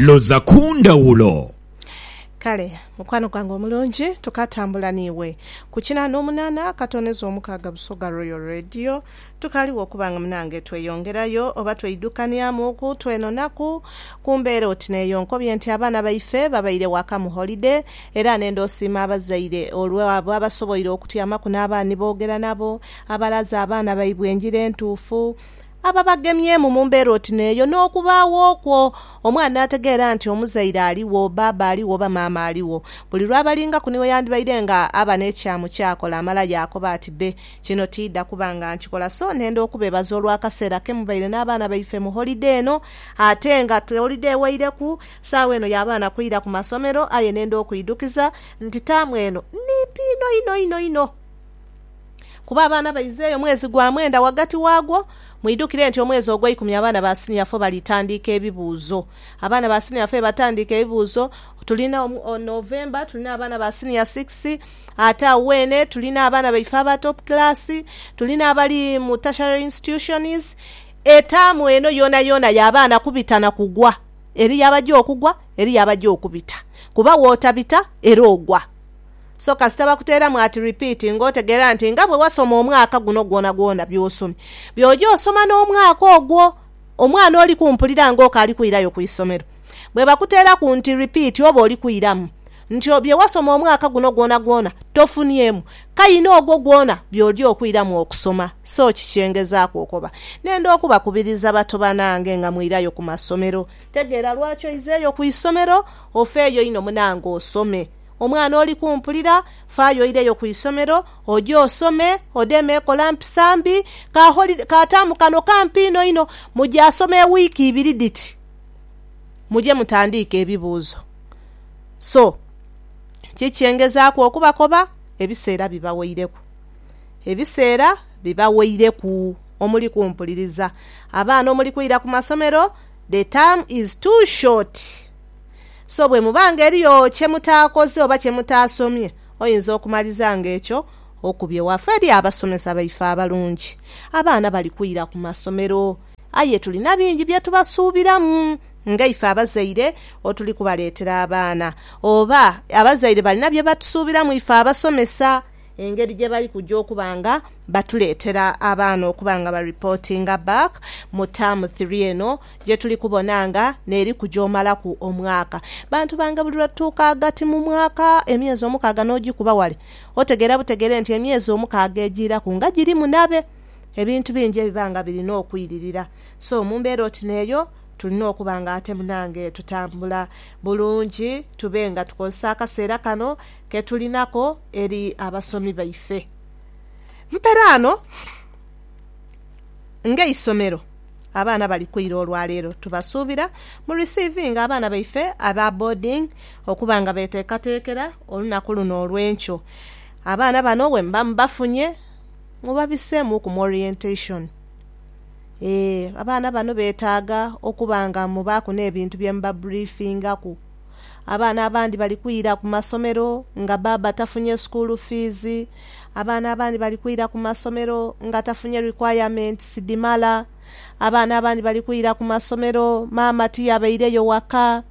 Loza ku ndhawulo. Kale, mukwano gwange omulungi, tukaatambula n'iwe ku kinaana omunaana akatooneza omukaaga Busoga Royal Radio. Tukaaliwo okuba nga munange tweyongerayo oba tweidhukanyamu ku twenonaku ku mbeera oti n'eyo. Nkobye nti abaana baife babaire waka mu holide era ne nd'osiima abazaire olw'abo abasoboire okutyamaku n'abaana ni boogera nabo, abalaze abaana baibwe engira entuufu, Abo abagemyemu mu mbeera oti n'eyo, n'okubaagho okwo, omwana n'ategeera nti omuzaire aligho, baaba aligho oba maama aligho. Buli lw'abalingaku niwe yandibaire nga aba n'ekyamu ky'akola, amala yaakoba ati, Be, kino tiidha kuba nga nkikola. So ntenda okubeebaza olw'akaseera ke mubaire n'abaana baife mu holide eno. Ate nga holide eweireku, saagho eno y'abaana kwira ku masomero, aye nenda okwidhukiza nti taamu eno nimpi inho inho inho inho. Kuba abaana baiza eyo mwezi gwa mwenda ghagati waagwo. Mwidhukire nti omwezi ogweikumi abaana ba siniya fo balitandiika ebibuuzo. Abaana ba siniya fo yebatandiika ebibuuzo. Tulina November tulina abaana ba siniya sikisi, ate agho weene tulina abaana baife aba topu kiraasi, tulina abali mu tertiary institutions. Etaamu eno yoonayoona ya baana kubita na kugwa. Eriyo abaja okugwa, eriyo abaja okubita. Kuba wotabita era ogwa. So kasita bakuteeramu ati Repeat ng'otegeera nti nga bwe wasoma omwaka guno gwonagwona by'osomye, by'oja osoma n'omwaka ogwo. Omwana oli kumpulira ng'okaali kwirayo ku isomero. Bwe bakuteeraku nti Repeat oba oli kwiramu nti bye wasoma omwaka guno gwonagwona tofuniemu kaina ogwo gwona by'oja okwiramu okusoma. So kiki ngezaaku okoba? Nenda okubakubiriza bato banange nga mwirayo ku masomero. Tegeera lwaki oizeeyo ku isomero. Ofeeyo inho munange osome. Omwana oli kumpulira, faayo oireyo ku isomero, oje osome, odeeme ekola mpisa mbi. Ka holiday kaataamu kano kampi inho inho. Muje asome ewiiki ibiri dhiti, muje mutandiike ebibuuzo. So, ki kye ngezaaku okubakoba? Ebiseera bibaweireku. Ebiseera bibaweireku. Omuli kumpuliriza. Abaana omuli kwira ku masomero, the term is too short. So bwe muba nga eriyo kye mutaakoze oba kye mutaasomye, oyinza okumaliza nga ekyo okubye waafa eri abasomesa baife abalungi. Abaana bali kwira ku masomero, aye tulina bingi bye tubasuubiramu ngaife abazaire otuli kubaleetera abaana. Oba abazaire balina bye batusuubiramu ife abasomesa engeri gye bali kuja okuba nga batuleetera abaana okuba nga baripootinga back mu term three eno. Gye tuli kubona nga n'eri ku gy'omalaku omwaka. Bantu bange, buli lwe tutuuka ghagati mu mwaka, emyezi omukaaga n'ogikuba ghale, otegeera butegeere nti emyezi omukaaga egiiraku nga giri munabe. Ebintu bingi ebiba nga birina okwiririra. So, mu mbeera oti n'eyo, tulina okuba nga ate munange tutambula bulungi, tube nga tukozesa akaseera kano ke tulinako eri abasomi baife. Mperaano, ng'eisomero. Abaana bali kwira olwa leero tubasuubira mu risiivinga abaana baife aba boarding okuba nga beteekateekera olunaku luno olw'enkyo. Abaana bano bwemuba mubafunye mubabiseemuuku mu orientation. Ee, abaana bano beetaaga okuba nga mubaaku n'ebintu bye mubabriefingaku. Abaana abandi bali kwira ku masomero nga baaba tafunye sukuulu fiizi. Abaana abandi bali kwira ku masomero nga tafunye requirements dhimala. Abaana abandi bali kwira ku masomero maama tiyabaireyo waka.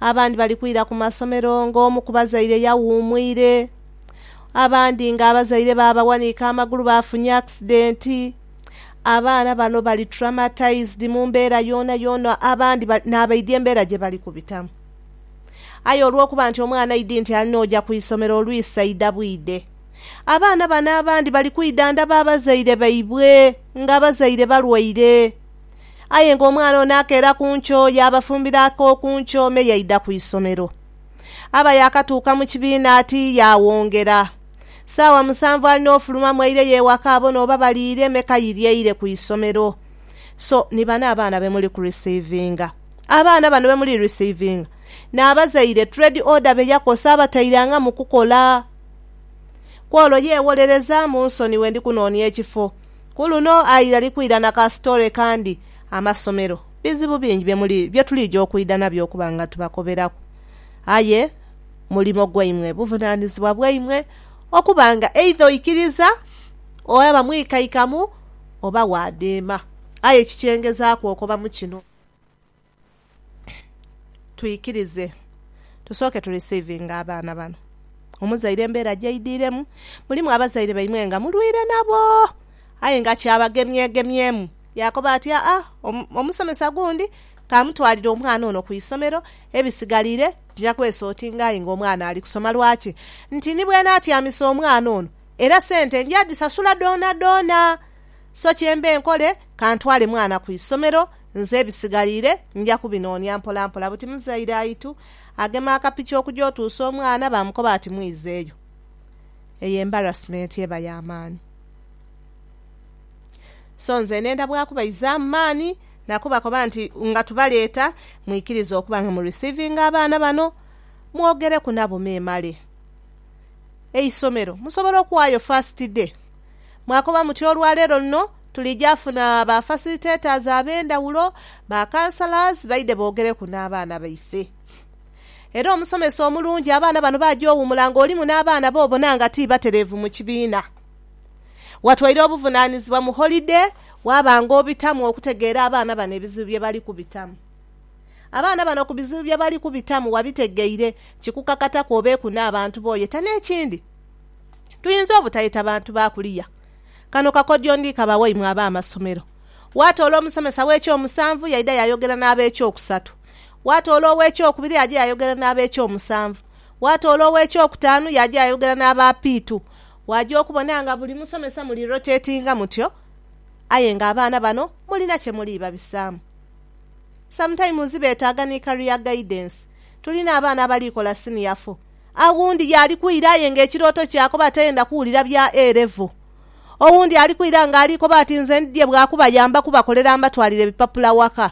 Abandi bali kwira ku masomero ng'omu ku bazaire yawuumwire. Abandi ng'abazaire baabawanika amagulu baafunye akisidenti. Abaana bano bali traumatized mu mbeera yoonayoona abandi n'abaidhi embeera gye bali kubitamu. Aye olw'okuba nti omwana idi nti alina oja ku isomero olwisa idha bwide, abaana bano abandi bali kwidhandhaba abazaire baibwe nga abazaire balwaire. Aye ng'omwana ono akeera ku nkyo yaabafumbira ak'oku nkyo me yaidha ku isomero. Aba yaakatuuka mu kibiina ati yaawongera. Saawa musanvu alina ofuluma mweire ye waka abone oba baliire me kayiri eire ku isomero. So ni bano abaana be muli ku receivinga. Abaana bano be muli receivinga ni abazaire trade order be yakosa abatairanga mu kukola. Kwolo ye wolereza munsoniwe ndi kunoonia ekifo. Ku luno aira ali kwira na ka story kandi. Amasomero bizibu bingi bye muli bye tuliija okwida nabyo okuba nga tubakoberaku. Aye. Mulimo gwaimwe, buvunaanizibwa bwaimwe okuba nga eidha oikiriza oba mwikaikamu oba waadheema. Aye ekikyengezaaku okoba mu kino, twikirize tusooke tu receivinge abaana bano. Omuzaire embeera gyaidhiiremu, mulimu abazaire baimwe nga mulwaire nabo, aye nga kyabagemyegemyemu. Yaakoba ati, Aa, omusomesa gundi k'amutwalire omwana ono ku isomero, ebisigaliire, Tija kwesa oti nga aye nga omwana ali kusoma lwaki nti ni bwenaatyamisa omwana ono era sente nja dhisasula dhoonadhoona. So kye mbe nkole ka ntwale mwana ku isomero nze ebisigaliire nja kubinoonia mpolampola. Buti muzaire aitu agema akapiki okuja otuusa omwana baamukoba ati mwiizeeyo. Eyo embarrassment eba ya maani. So nze ne ndabwaku baizaamu maani. Na kubakoba nti, Nga tubaleeta, mwikirize okuba nga mu receivinga abaana bano, mwogereku nabo memale eisomero, musobole okuwaayo first day. Mwakoba muti, Olwa leero luno tulija funa ba facilitators ab'endhawulo, ba counsellors, baidhe boogereku n'abaana baife. Era omusomesa omulungi abaana bano baja owumula nga olimu n'abaana b'obona nga ti batereevu mu kibiina. Watwaire obuvunaanizibwa mu holide waaba ng'obitamu okutegeera abaana bano ebizibu bye bali kubitamu. Abaana bano ku bizibu bye bali kubitamu wabitegeire, kikukakataku obeeku n'abantu bo yeta. N'ekindi, tuyinza obutayeta bantu ba kuliya. Kano kakodyo ndi kaba waimwe ab'amasomero. Waatoola omusomesa w'ekyomusanvu yaidha yaayogera n'ab'ekyokusatu. Waatoola ow'ekyokubiri yaaja yaayogera n'ab'ekyomusanvu. Waatoola ow'ekyokutaanu yaaja yaayogera n'abapiitu. Waja okubona nga buli musomesa muli rotatinga mutyo aye nga abaana bano mulina kye muli babisaamu. Sometimes betaaga ni career guidance. Tulina abaana abali kola senior four, aghundi yaali kwira aye nga ekirooto kye akoba tayenda kuwulira bya A level. Owundi ali kwira nga ali koba ati nze ndidhie bwa kubayamba kubakolera mbatwalire bipapula waka.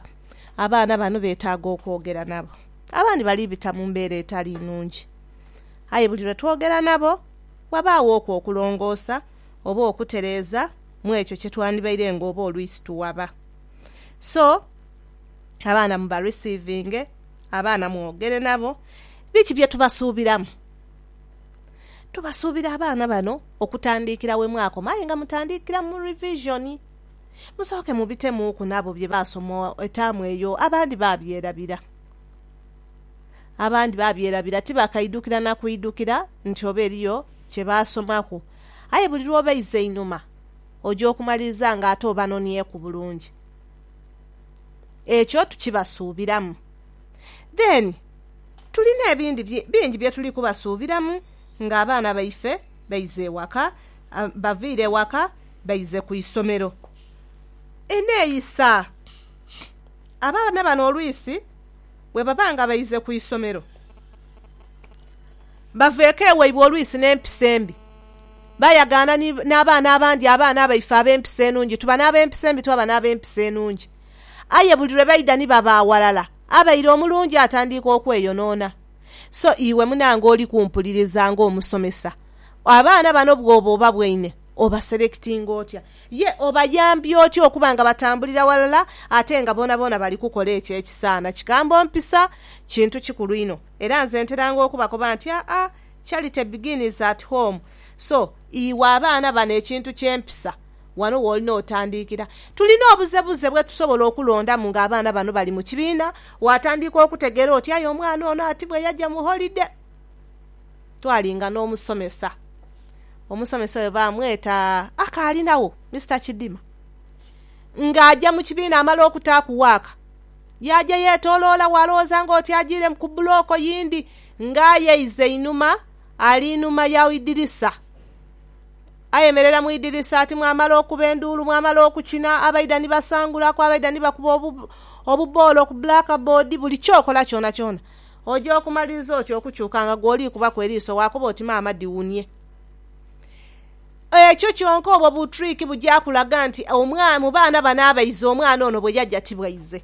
Abaana bano betaaga okwogera nabo. Abandi bali bita mu mbeera etali nnungi aye buli lwe twogera nabo, wabaawooku okulongoosa oba okutereeza mu ekyo kye twandibaire nga oba olwisi tuwaba. So, abaana mu ba receivinge, abaana mwogere nabo. Biki bye tubasuubiramu? Tubasuubira abaana bano okutandiikira we mwakoma aye nga mutandiikira mu revision. Musooke mubitemuuku nabo bye baasoma etaamu eyo, abandi baabyerabira. Abandi baabyerabira, tibaakaidukira na kuidukira nti oba eriyo kye baasomaku. Aye buli lw'obeiza einhuma, oja okumaliriza nga ate obanonhyeku bulungi. Ekyo tukibasuubiramu. Then, tuli n'ebindi bingi bye tuli kubasuubiramu ng'abaana baife baize ewaka, bavaire ewaka baize ku isomero. Eneeyisa. Abaana bano olwisi. bwe baba nga baize ku isomero, baveeko ewaibwe olwisi n'empisa embi. Baayagaana ni n'abaana abandi abaana abaife ab'empisa enungi. Tuba n'ab'empisa embi, twaba n'ab'empisa enungi. Aye buli lwe baidha ni baba aghalala, abaire omulungi atandiika okweyonoona. So iwe munange oli kumpuliriza ng'omusomesa, abaana bano bw'oba obabwaine, obaselectinga otya? Ye obayambye otya okuba nga batambulira ghalala ate nga boonaboona bali kukola ekyo ekisaana? Kigambo mpisa kintu kikulu inho, era nze nteranga okubakoba nti, Aa, charity begins at home. So, iwe abaana bano ekintu ky'empisa, wano w'olina otandiikira. Tulina obuzebuze bwe tusobola okulondamu nga abaana bano bali mu kibiina. Waatandiika okutegeera oti, Aye omwana ono ati bwe yaja mu holide! twalinga n'omusomesa. Omusomesa oyo baamweta Akaalinagho, Mister Kidima. Ng'aja mu kibiina amala okutaaku waaka, yaaja yeetoloola walowooza ng'oti ajiiremu ku bulooko yindi ng'ayeiza einhuma ali inhuma ya idirisa. Ayemerera mu idirisa ati mwamala okuba enduulu, mwamala okukina, abaidha ni basangulaku, abaidha ni bakuba obuboolo ku blackboard, buli ky'okola kyonakyona. Oja okumaliriza oti okukyuka nga gw'oliikubaku eriiso waakoba oti maama diwunie. Ekyo kyonka obwo bu trick buja kulaga nti omwana, mu baana bano abaiza omwana ono bwe yaja ti bwaize.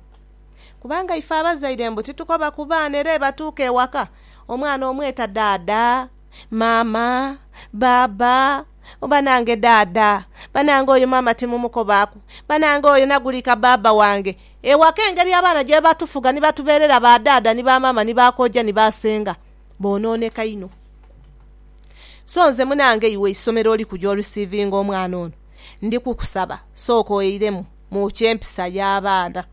Kubanga ife abazaire mbu titukoba ku baana era ebatuuka ewaka omwana omweta daada, maama, baaba, banange daada, banange oyo maama timumukobaaku, banange oyo nagulika baaba wange. Ewa k'engeri abaana gye batufuga ni batubeerera ba dhaadha ni ba maama ni ba koja ni ba senga boonooneka inho. So nze munange iwe isomero oliku gy'orisiivinga omwana ono, ndi kukusaba sooka oiremu mu ky'empisa y'abaana.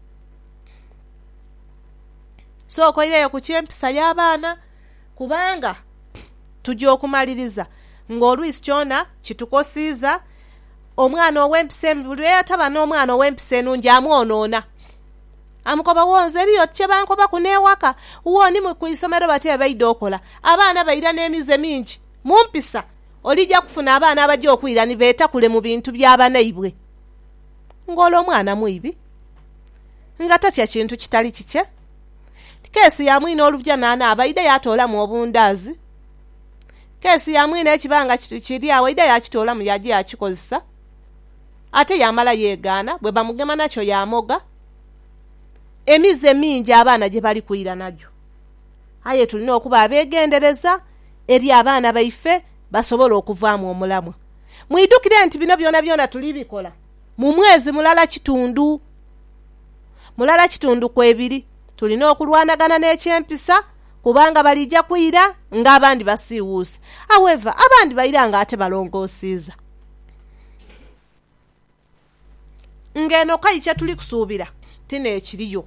Sooka oireyo ku ky'empisa y'abaana. Kubanga tuja okumaliriza ng'oluisi kyona kitukosiiza. Omwana ow'empisa embi, buli lwe yataba n'omwana ow'empisa enungi, amwonoona. Amukoba, Wo, nze eriyo oti kye bankobaku n'ewaka. Wo, ni mu isomero bati bye baidha okola. Abaana baira n'emize mingi mu mpisa. Olija kufuna abaana abaja okwira ni beetakule mu bintu bya banaibwe. Ng'ole omwana mwibi, nga tatya kintu kitali kikye. Keesi ya mwine oluvjanaana aba aidha yaatoolamu obundaazi. Keesi ya mwine ekiba nga kiri agho aidha yaakitoolamu yaaja yaakikozesa, ate yaamala yeegaana. Bwe bamugema nakyo yaamoga. Emize mingi abaana gye bali kwira nagyo. Aye tulina okuba abeegendereza eri abaana baife basobole okuvaamu omulamwa. Mwidukire nti bino byonabyona tuli bikola. mu mwezi mulala kitundu mulala kitundu ku ebiri. Tulina okulwanagana n'eky'empisa kubanga baliija kwira ng'abandi basiiwuuse. However, abandi baira ng'ate balongoosiiza. Ng'eno k'aye kye tuli kusuubira ti n'ekiriyo.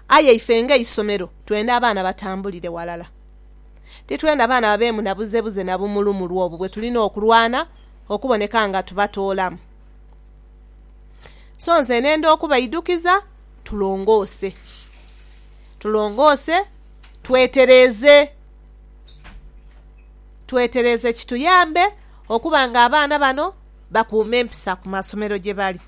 Aye ife ng'eisomero twenda abaana batambulire ghalala. Titwenda baana babeemu na buzebuze na bumulumulu obwo bwe tulina okulwana. okuboneka nga tubatoolamu. So nze nenda okubaidhukiza tulongoose. Tulongoose, twetereeze. Twetereeze kituyambe okuba nga abaana bano bakuuma empisa ku masomero gye bali.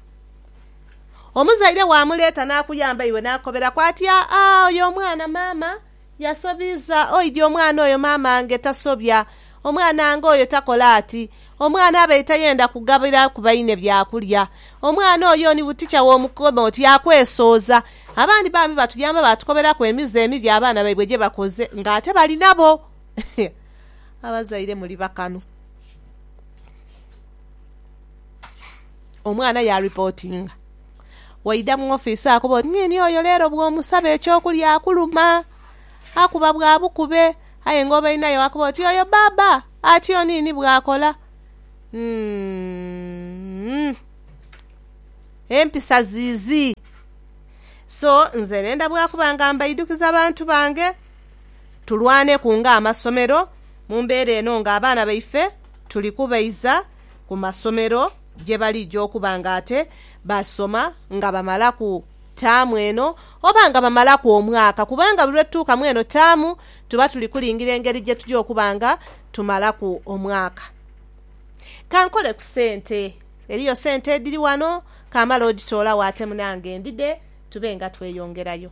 Omuzaire bw'amuleeta n'akuyamba iwe n'akukoberaku ati, Aa, oyo omwana maama! Yasobiiza oidhi omwana oyo maamange tasobya, omwanange oyo takola ati, omwana abaire tayenda kugabira ku baine byakulya, omwana oyo ni butikya w'omukema oti akwesooza. Abandi bambi batuyamba baatukoberaku emize emibi abaana baibwe gye bakoze ng'ate bali nabo. Abazaire muli bakanu. Omwana yaaripotinga. Waidha mu ofiisi akuba oti, Ng'eni oyo leero bw'omusaba eky'okulya akuluma. Akuba bwa bukube. Aye ng'obainayo akuba oti, Oyo bbaabba atyo niini bw'akola. Umm. Empisa ziizi. So, nze ndhenda bwa kuba nga mbaidukiza bantu bange, tulwaneku ng'amasomero mu mbeera eno ng'abaana baife tuli kubaiza ku masomero. gye balija okuba nga ate baasoma nga bamalaku taamu eno oba nga bamalaku omwaka, kubanga buli lwe tutuuka mu eno taamu tuba tuli kulingira engeri gye tugya okuba nga tumalaku omwaka. Ka nkole ku sente. Eriyo sente edhiri wano, ka male odhitoolagho ate munange ndhidhe tube nga tweyongerayo.